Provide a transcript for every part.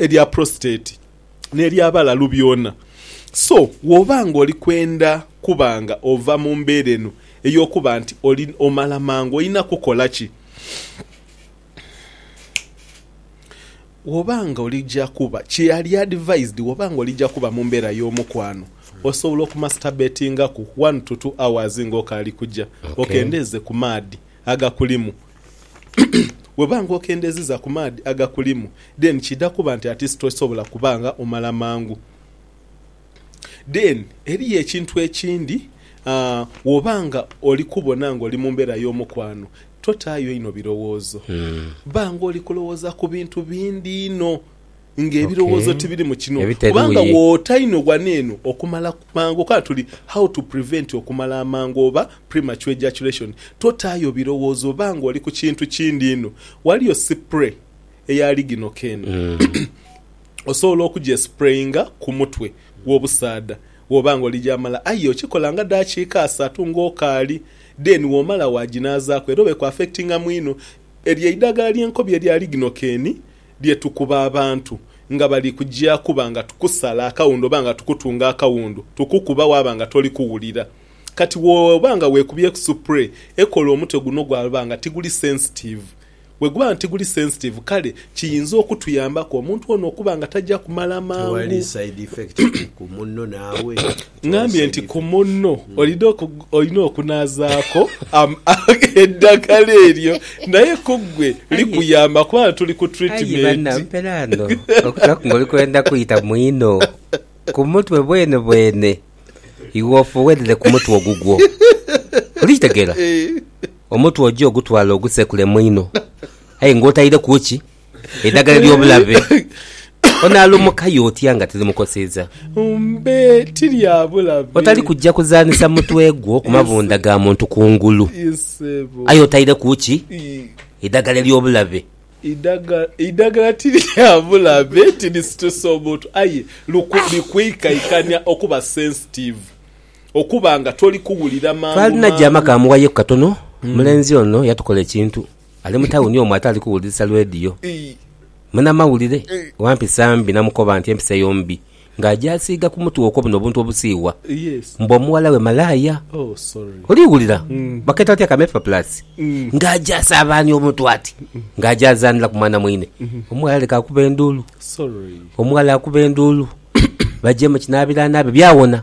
erya prostate n'erya balalu byona. So, bw'oba ng'oli kwenda kuba nga ova mu mbeera eno ey'okuba nti omala mangu, olina kukola ki? Bw'oba ng'olija kuba, kyali advised, bw'oba ng'olija kuba mu mbeera y'omukwano, osobola okumasturbatingaku one to two hours ng'okaali kuja, okendeeze ku maadhi agakulimu Bw'oba nga okendeziza ku maadhi agakulimu, then kiidha kuba nti ati tosobola kuba nga omala mangu. Then eriyo ekintu ekindi, bw'oba nga oli kubona nga oli mu mbeera y'omukwano, totaayo inho birowoozo. Ba nga oli kulowooza ku bintu bindi inho. Nga ebirowoozo tibiri mu kino kubanga woota inho wano eno okumala mangu okola tuli How to prevent okumala amangu oba premature ejaculation totaayo birowoozo oba nga oli ku kintu kindi inho waliyo sipray eya liginoka eno osobola okugyesprayinga ku mutwe gwobusaadha woba nga oli gyamala aye okikola nga dakiika asatu nga okaali then womala waginaazaku era oba eku affectingamu inho eryo eidagala lyenkobi erya liginoka eni lye tukuba abantu nga bali kuja kuba nga tukusala akawundu oba nga tukutunga akawundu, tukukuba waaba nga toli kuwulira. Kati bw'oba nga weekubyeku supure ekola omutwe guno gwaba nga tiguli sensitiivu. Bwe guba nga tiguli sensitiivu kale kiyinza okutuyambaku omuntu ono okuba nga taja kumala mangu. Tewali side effect ku munno naawe? Ngambye nti ku munno olina olina okunaazaaku eddagala eryo naye ku ggwe likuyamba kubanga tuli ku tiritimenti. Okutulaku ng'oli kwenda kwita mwino ku mutwe bwenebwene, iwe ofugherere ku mutwe ogugwo. Oli kitegeera? Omutwe oje ogutwale ogusekule mwino aye ng'otaireku ki? edhagala ery'obulabe, onaalumukayo otya nga tirimukoseza? Mbe ti lya bulabe. Otali kuja kuzaanhisa mutwe gwo ku mabunda ga muntu kungulu, aye otaireku ki? Eidhagala ery'obulabe. Eidhagala ti lya bulabe, tirisitusa omuntu, aye likwiikaikania okuba sensitive, okuba nga toli kuwulira mangu mangu. Twalina gyama kamughayeku katono, omulenzi ono yatukola ekintu. Ali mu tawuni omwo ate ali kuwulirisa lwediyo. Munamawulire wa mpisa mbi namukoba nti empisa eyo mbi ng'aja asiiga ku mutwe okwo buno obuntu obusiiwa mbu omuwala we malaaya. Oli wulira bakeeta bati akameefa pulaasi ng'aja asaabaania obuntu ati ng'aja azaanira ku mwana mwine. Omuwala aleka akuba enduulu. Omuwala akuba enduulu baje mu kinaabiro anaabe byawona.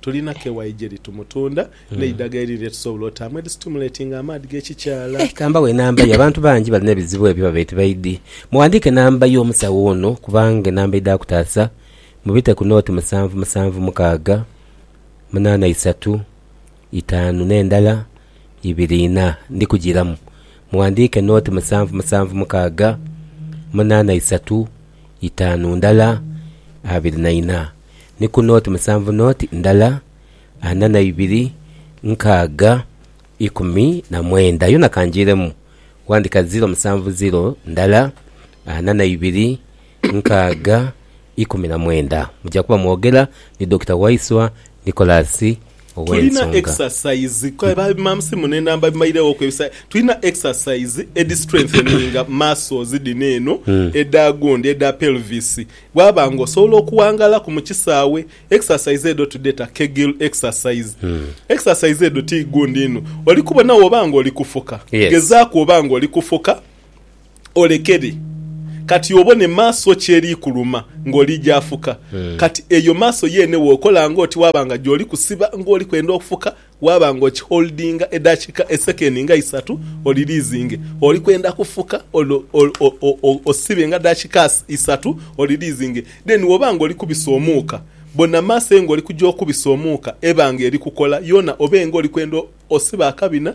Tulina kewayi gyeri tumutunda n'eidaga eri lye tusobola otaamu erisitimuletinga amaadhi g'ekikyala. Ka mbawe enamba ye. Abantu bangi balina ebizibu ebyo babaire tibaidhi. Mughandiike enamba y'omusawo ono kubanga enamba eidha kutaasa. Mubite ku nooti musanvu musanvu mukaaga munaana isatu itaanu n'endala ibiri ina. Ndi kugiiramu. Mughandiike nooti musanvu musanvu mukaaga munaana isatu itaanu ndala abiri na ina. ni ku nooti musanvu nooti ndala ana na ibiri nkaaga ikumi na mwenda yona kangiiremu. Wandika ziro musanvu ziro ndala ana na ibiri nkaaga ikumi na mwenda. Muja kuba mwogera ni Dokita Waiswa Nicholas Tulina exercise kale ba mam's mune enamba bimaireghoku ebisa tulina exercise edi strengtheninga muscles dhino eno edha gundi edha pelvis bwaba nga osobola okuwangalaku mu kisaawe exercise edho tudheta kegel exercise exercise edho ti gundi inho oli kubona woba nga oli kufuka Yes. gezaaku oba nga oli kufuka Olekere kati obone maaso ki eri kuluma ng'oli gy'afuka. Kati eyo maaso yeene w'okola ng'oti waaba nga gy'oli kusiba ng'oli kwenda okufuka, waaba ng'okiholdinga edakika esekendi nga isatu, oliriizinge. Oli kwenda kufuka olwo osibe nga dakika isatu, oliriizinge. Then w'oba ng'oli kubisa omuuka, bona maaso ye ng'oli kugya okubisa omuuka, ebanga eri kukola yoona obe ng'oli kwenda osiba akabina,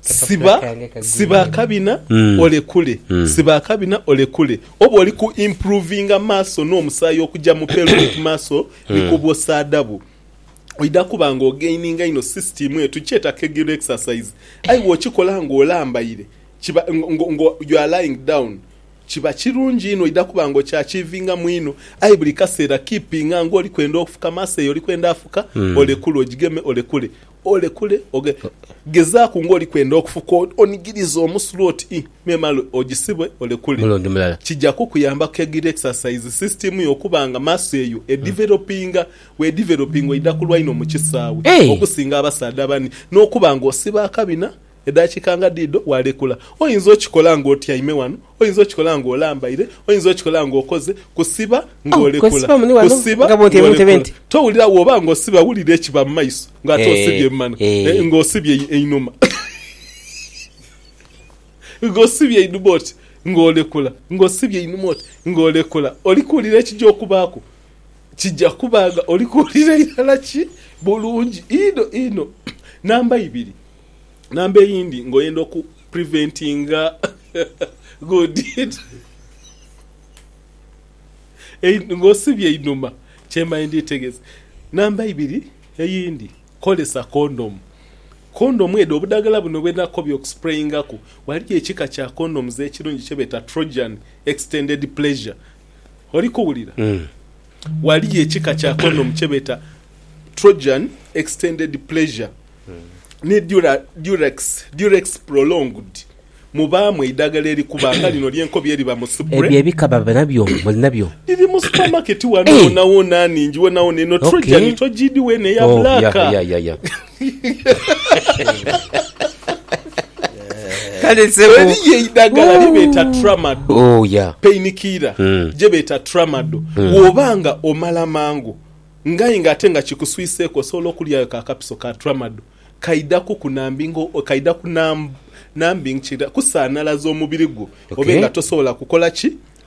Siba siba akabina olekule siba akabina olekule oba oli ku improvinga maso no musayi okuja mu pelvic muscle ni ku bwosaadabu oidha kuba nga ogaininga inho system eyo tukyeta kegel exercise aye bwokikola nga olambaire kiba ngo ngo you are lying down kiba kirungi inho oidha kuba nga okyachivingamu inho aye buli kaseera keepinga nga oli kwenda ofuka maso eyo oli kwenda afuka olekule ogigeme olekule Olekule oge. Gezaaku ng'oli kwenda okufuka onigiriza omusulu oti i, me male ogisibwe olekule. Omulundi mulala. Kija kukuyamba ku egiri exercise system yo okuba nga muscle eyo edevelopinga. Bw'edevelopinga oidha kulwa inho mu kisaawe Hey! okusinga abasaadha abandi n'okuba ng'osiba akabina Edhakiika nga dhidho walekula. Oyinza okikola ng'otyaime ghano, oyinza okikola ng'olambaire, oyinza okikola ng'okoze kusiba ng'olekula, kusiba ng'olekula. Towulira bw'oba ng'osiba wulira ekiba mu maiso ng'ate osibye mu mano, ng'osibye einhuma, ng'osibye einhuma oti ng'olekula, ng'osibye einhuma oti ng'olekula. Oli kuwulira ekija okubaaku? Kija kuba nga oli kuwulira irala ki? Bulungi inho inho. Namba ibiri. Number eyindi nga oyenda oku preventinga good nga osibye einhuma kyemani nditegeza. Number ibiri eyindi kozesa kondomu, kondomu edho obudhagala buno bwenakobye oku sprayingaku ghaligho ekika kya kondomu ekirungi kyebeta trojan extended pleasure oli kuwulira? Ghaliyo ekika kya condom kye beeta Trojan Extended Pleasure ni Durex, Durex Prolonged, mubaamu eidagala erikuba nga lino ly'enkobi eriba mu spray. Ebyo ebika baba nabyo? Muli nabyo? Dhiri mu supermarket ghano wonawona, nhingi wonawona. Eno Trojan togiidhi weene, ya black. Kale sebo. Eriyo eidagala lye beeta Tramadol, Oh, yeah. pain killer, Mm. gye beeta Tramadol. Bw'oba nga omala mangu nga aye nga ate nga kikuswiseeku osobola okulyayo ka kapiso ka Tramadol kaidhaku kunambinga o- kaidha kunamb, numbing kira, kusaanalaza omubiri gwo Okay. obe nga tosobola kukola ki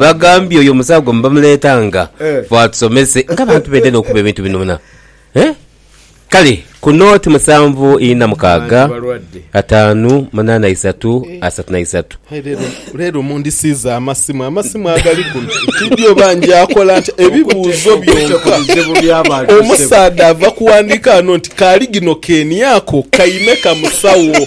Bagambye oyo omusawo gwe bamuleetanga ffe atusomese ng'abantu b'endhe n'okuba ebintu binoona. Kale ku nooti musanvu ina mukaaga, ataanu munaana isatu asatu na isatu. Leero mundisiiza amasimu. Amasimu agali kuno tidhi oba njaakola ntya ebibuuzo byonka. Omusaadha ava kuwandiika ghano nti, Kaali gino keeni ako kaime ka musawo?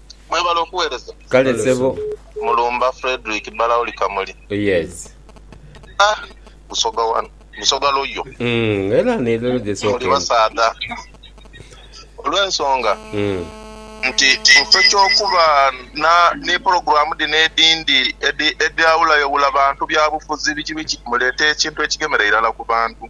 Mwebale okuwereza. Kale sebo. Mulumba Fredrick Balauli Kamuli. Oh yes. Ah Busoga wano Busoga loyo. Umm era ni lero gye sooka. Muli basaadha olwensonga nti mufo kyokuba na ni pulogulamu dhino edindi edhi edhawulayoghula bantu byabufuzi biki biki muleta ekintu ekigemera irala ku bantu.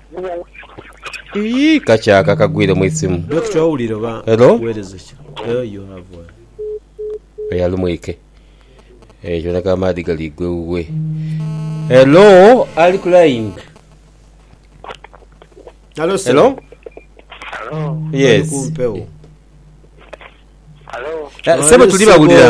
Iyii kakyaka kagwire mu isimu. Hello? Oyo ali mwike eeh kiboneka amaadhi gali igwa ewuwe. Hello ali ku line? Hello? Yes. Sebo tuli bawulira.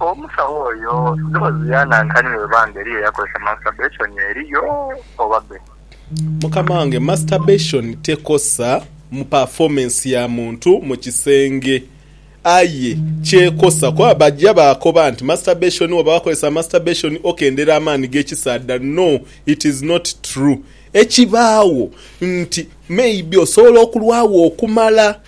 Omusawo oyo doozi ya nankani bwe biba nga eriyo yakozesa masturbation eriyo oba be. Mukama wange masturbation tekosa mu performance ya muntu mu kisenge aye kyekosa kuba baja bakoba nti masturbation woba wakozesa masturbation okendera amaani gekisaadha no it is not true ekibaawo nti maybe osobola okulwaawo okumala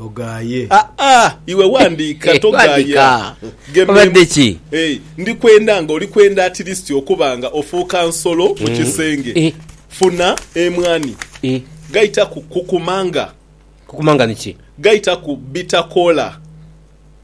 Ogaaye. Aa, iwe wandiika, togaaya. Geme mu. Eeh, ndi kwenda nga oli kwenda atilisiti okuba nga ofuuka nsolo mu kisenge. Funa emwani. Gaita ku kukumanga. Kukumanga ni ki? Gaita ku bitakoola.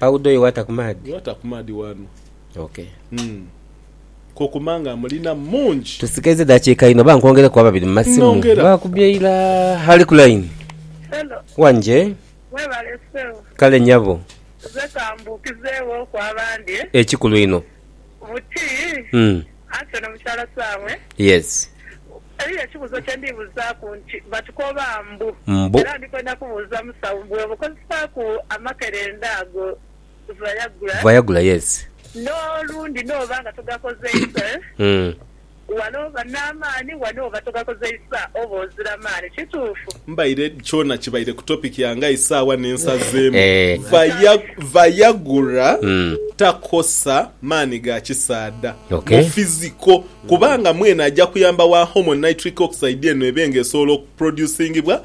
Powder oyo wata ku maadhi. Wata ku maadhi wano. Ok. Kokuma nga amulina mungi. Tusigaizza eddakiika inho oba nkwongereku ababiri mu masimu? Bakubye ira ali ku line. Hello. Wanje. Webale ssebo. Kale nyabo. Nze kambuukizeghoku abandi. Ekikulu inho. Buti Mm. anti ono mukyala Saamwe. Yes. Eriyo ekibuzo kyendi buzaku nti batukoba mbu Mbu. era ndi kwenda kubuuza musawo mbu bwoba okozesaku amakerenda ago Viagra Viagra yes. no lundi noba nga togakozeise. Mm. Wano oba n'amaani, wano oba togakozeisa, oba ozira maani. Kituufu. Mbaire kyona kibaire ku topic yange aye saawa nensazeemu vaya vayagura takosa maani ga kisaadha mu physical kubanga mwene aja kuyamba wa hormone nitric oxide eno ebe nga esobola oku producingibwa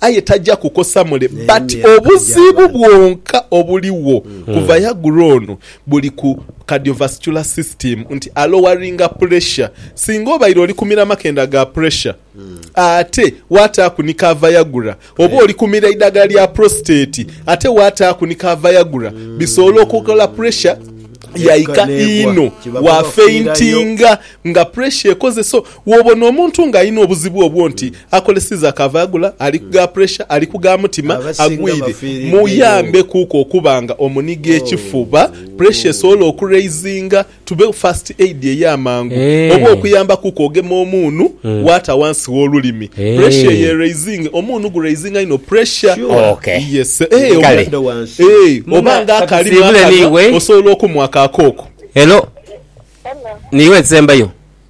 Aye taja kukosa mule but obuzibu bwonka obuligho ku Viagra ono buli ku cardiovascular system nti a loweringa pressure singa obaire oli kumira makenda ga pressure ate wataaku ni ka Viagra oba oli kumira idagala lya prostate ate wataaku ni ka Viagra bisobola okukola pressure yaika inho wa faintinga nga pressure ekoze so Wobona omuntu nga alina obuzibu obwo nti akoleseza ka Viagra, ali ku ga puresha, ali ku ga mutima, agwire, muyambe kuuku okuba nga omuniga ekifuba, puresha esobole oku raisinga, tube first aid ey'amangu, oba okuyamba kuuku ogema omuunu waata wansi w'olulimi, puresha eyo e raisinge, omuunu gu raisinga inho puresha. Oba nga akalimu akanhwa, osobola okumuwa ka kooko. Hello, niiwe nsembayo?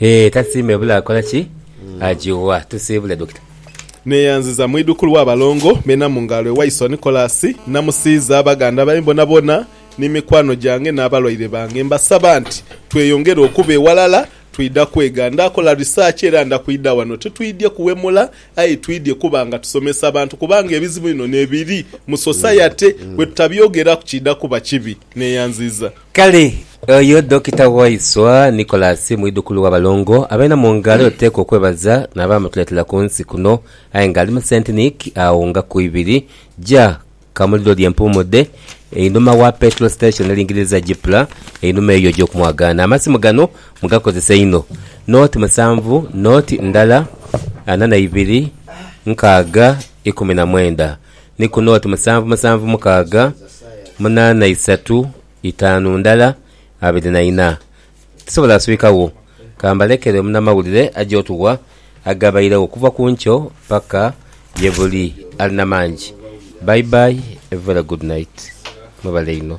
Eeh tasiima ebula akola ki? Ajiwa. Tusiibule Dokita. Neyanziza mwidhukulu wa balongo bena mu ngalo ewa iso Nicholas Namusiiza, baganda bae bonabona ni mikwano gyange n'abalwaire bange. Mbasaba nti tweyongere okuba eghalala, twidha kwega. Nda kola research era nda kwidha wano. Titwidhye kuwemula aye twidhye kuba nga tusomesa bantu kubanga ebizibu bino nebiri mu society bwetutabyogeraku kidha kuba kibi. Neyanziza. Kale oyo Dokita waiswa Nicholas mwidhukulu wa balongo abeena mu ngalo abateekwa okwebaza n'abaamutuletera ku nsi kuno aye nga ali mu Saint-Nic agho nga ku ibiri ja Kamuliro lye mpuumudde einhuma wa Petrol Station elingiririza Gypla einhuma eyo egy'okumwagaana. Amasimu gano mugakozesa inho Nought musanvu nought ndala ana na ibiri nkaaga ikumi na mwenda. ni ku nooti musanvu musanvu mukaaga munaana isatu itaanu ndala abiri na ina. Tisobola kuswika wo. Ka mbalekere omunamawulire aje otuwa agabairegho okuva ku nkyo paka ye buli. Ali na mangi. Bye bye, a very good night. Mwebale inho.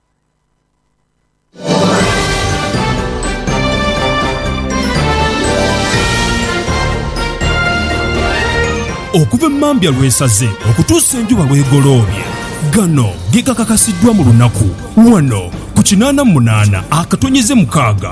Okuva emambya lw'esaze okutuusa enjuba lw'egoloobye, gano ge gakakasiddwa mu lunaku wano ku kinaana mu munaana akatonnyeze mukaaga.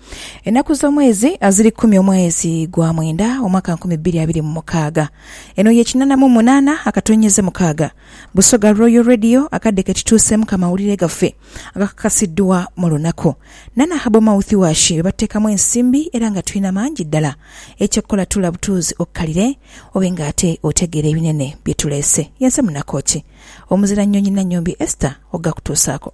Enaku z'omwezi aziri kumi omwezi gwa mwenda omwaka nkumi bbiri abiri mu mukaaga. Eno ye kinana mu munana akatonyeze mukaaga Busoga Royal Radio akadde ketituusemu ka mawulire gaffe agakakasiddwa mu lunaku nana Herbal Mouth Wash bebateekamu ensimbi era nga tulina mangi ddala eky'okukola tuula butuuzi okkalire obe nga ate otegeera ebinene byetuleese. Yenze munaku ki? Omuzira Nnyonyi Nannyombi Esther okgakutuusaako.